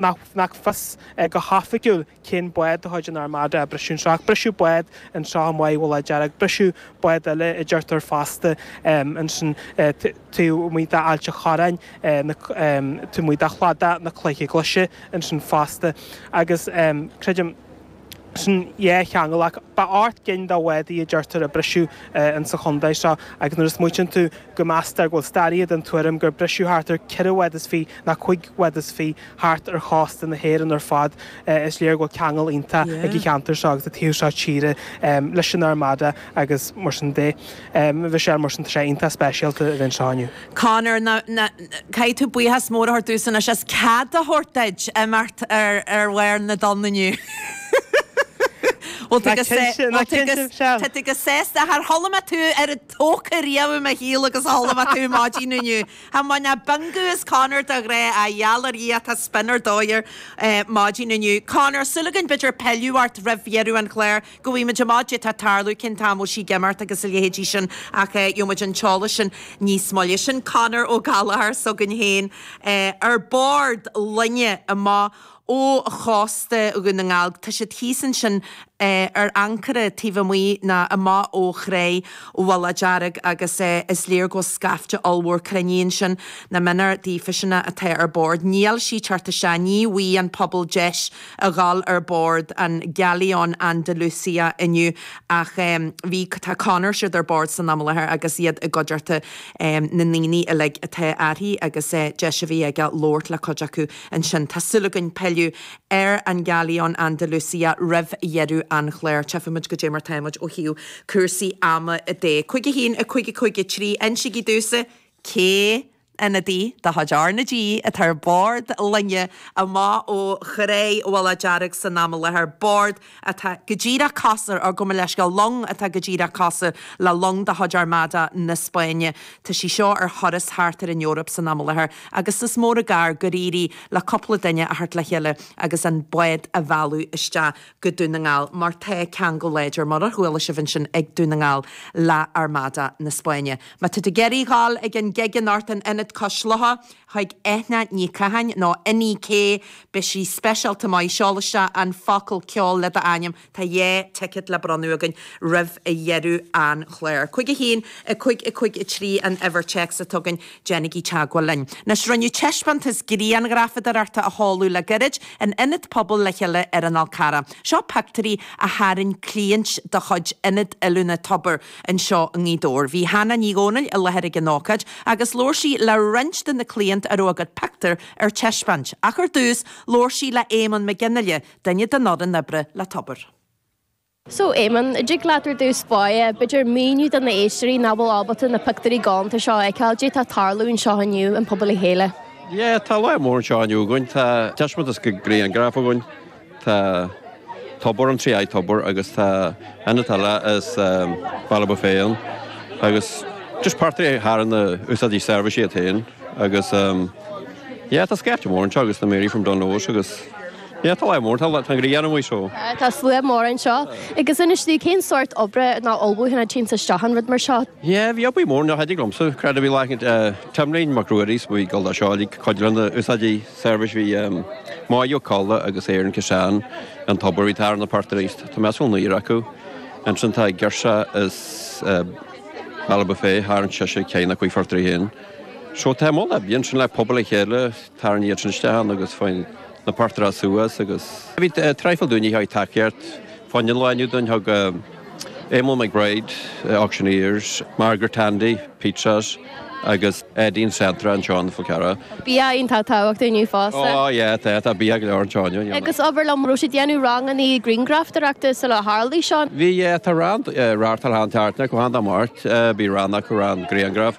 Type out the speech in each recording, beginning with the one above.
nach fios go hoifigiúil cén bád de chuid an Armada a briseadh anseo ach briseadh bád anseo taobh amuigh de Mhullach Dearg, briseadh bád eile a deirtear fosta ansin taobh amuigh d'Ailt a' Chorráin taobh amuigh de Chladach na Cloiche Glaise ansin fosta agus creidim sin dhá cheangal ach ba ocht gcinn de bhádaí a deirtear a briseadh in sa chontae seo agus nuair a smaoitíonn tú go meastar go bhfuil staraithe den tuairim gur briseadh thart ar ceithre bhád is fiche nó cúig bhád is fiche thart ar chósta na hÉireann ar fad is léir go bhfuil ceangal iontach ag an cheantar seo agus an taobh seo tíre leis an Armada agus mar sin de bhí sé mar sin tá sé iontach speisialta a bheith anseo inniu. Conor, Ná, ná, caithfidh tú buíochas mór a thabhairt domhsa anois as cead a thabhairt duit imeacht ar, ar bharr na dtonn inniu. Bhuel, tá go, tá, bhuel, tá go, tá tú go sásta. Char chuala mé tú chomh tógtha riamh i mo shaol agus chuala mé tú maidin inniu. Tha, má, ná Bingú is Conor do ghrá, a gheall ar Dhia, tá spion ar dóigh air maidin inniu. Conor, súil againn b'fhéidir pilleadh ort roimh dheireadh an chláir. Go bhfaighidh muid amach cad é tá ag tarlú, cén t-am a bhfuil sí ag imeacht agus a leithéidí sin ach gheobhaidh muid an t-eolas sin níos moille. Sin Conor Ó Gallchóir s'againn féin ar bord loinge amach ó chósta Dhún na nGall. Tá siad thíos ansin ar ancaire taobh amuigh nó amach ó thráigh Mhullach Dearg agus is léir go bhfuil scaifte ollmhór cruinnithe ansin. Nach méanar daofa sin atá ar bord, níl sí ag teacht isteach, ní bhfuighidh an pobal deis a dhul ar bord an Galeón Andalucia inniu ach bhí, tá Conor, siad ar bord san am i láthair agus iad i gcuideachta na ndaoine uilig atá uirthi agus deis a bhí aige labhairt le cuid acu ansin. Tá súil againn pilleadh ar an Galeón Andalucia roimh dheireadh an chláir. Tchífimid cad é mar táimid ó thaobh cúrsaí ama de. 51, 5, 53, insígí domhsa cén Ionadaí de chuid R na G atá ar bhord loinge amach ó thráigh Mhullach Dearg san am i láthair, bord atá go díreach cosúil, gabh mo leithscéal, long atá go díreach cosúil le long de chuid Armada na Spáinne. Tá sí seo ar thuras thart ar an Eoraip san am i láthair agus is mór an gar gur éirigh le cúpla duine a theacht le chéile agus an bád a mhealladh isteach. go Dún na nGall mar tá ceangal láidir mar a chuala sibh ansin ag Dún na nGall le hArmada na Spáinne. Má tá tú ag iarraidh a dhul ag an gig anocht in Ionad Cois Locha chuig Eithne Ní Chatháin nó Inni-K beidh sí speisialta maith. Seol isteach an focal ceol le d'ainm tá dhá ticket le bronnadh againn roimh dheireadh an chláir. 5 1 5 5 3 an uimhir téacs a tugann Déanaigí teagmháil linn. Anois rinneadh taispeántas grianghrafadóireachta a sheoladh le gairid in Ionad Pobail le Chéile ar an Fhál Carrach. Seo pictiúirí a tharraing cliaint de chuid Ionad Oiliúna Tobar anseo i nGaoth Dobhair. Bhí Hannah Ní Dhomhnaill i láthair ag an ócáid agus labhair sí le roinnt de na cliaint a raibh a gcuid pictiúr ar taispeáint. Ach ar dtús, labhair sí le Éamonn Mac Fhionnghaile, duine den fhoireann oibre le Tobar. So, Éamonn, an dtig leat ar dtús báire, b'fhéidir, míniú do na héisteoirí nach bhfuil ábalta na pictiúirí gálanta seo a fheiceáil, caidé atá ag tarlú anseo inniu i bPobal le Chéile? Yeah, tá lá mór anseo inniu againn. Tá taispeántas de grianghraf againn. Tá tobar, an trí aghaidh tobar agus tá ionad lae as Ballybofey agus just portrait a tharraing na húsáideoirí seirbhísí iad féin agus, yeah, tá scaifte mór anseo agus na Mary from Dungloes agus. Tá a fhios mór, tá a fhios mór ann anseo. Tá a fhios mór anseo. Agus inis dom, cén sórt oibre ná ullmhúcháin a théann isteach i rud mar seo? Yeah, bhí obair mhór ná thaitin liomsa. Creid a bhí lá cheana Timlín Mac Ruairí is bhí dul anseo uilig, cuid de na húsáideoirí seirbhís bhí Máigh Ó Colla agus Éireann Ciseán, an tobar bhí ag tarraingt portraits. Tá mé as an aoir acu. Ansin tá ag girseach as Ballybofey tharraing sise ceann acu portrait féin. So tá a mholadh ar bith ansin le Pobal le Chéile. Tarraing iad sin isteach ann agus faigh na portráid suas agus. Bhí traidhfil daoine a thug tacaíocht fá na laethanta úd ann. Thug Éamonn McBride, auctioneers, Margaret Handy, pizzas, agus Aideen Centra anseo ar an Fhál Carrach. Bia iontach tábhachtach inniu fosta. Ó yeah tá, tá bia go leor anseo inniu. Agus abair liom, raibh siad ag déanamh ranganna grianghrafadóireachta sula tharlaigh seo? Bhí yeah, tá rang radharc thar theann teartan acu ar an Mháirt. Bhí rang acu, rang grianghraf.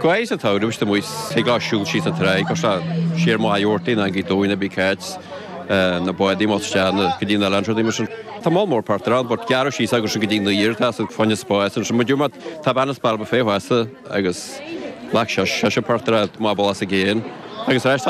Gaoth sa tsamhradh, is amuigh, thig leo siúl síos an tráigh, cur siar Machaire Rabhartaigh nó go dtí na, big cats, na bádaí amuigh isteach nó go dtí na lounge, rudaí mar sin. Tá moll mór portraits ann but gearradh síos agus sin go dtí New Year atá sa fáinne spáis ansin. Muid umat, tá bean as Ballybofey fosta agus ghlac sise portraits má ba lá sa gcéin agus ar ais.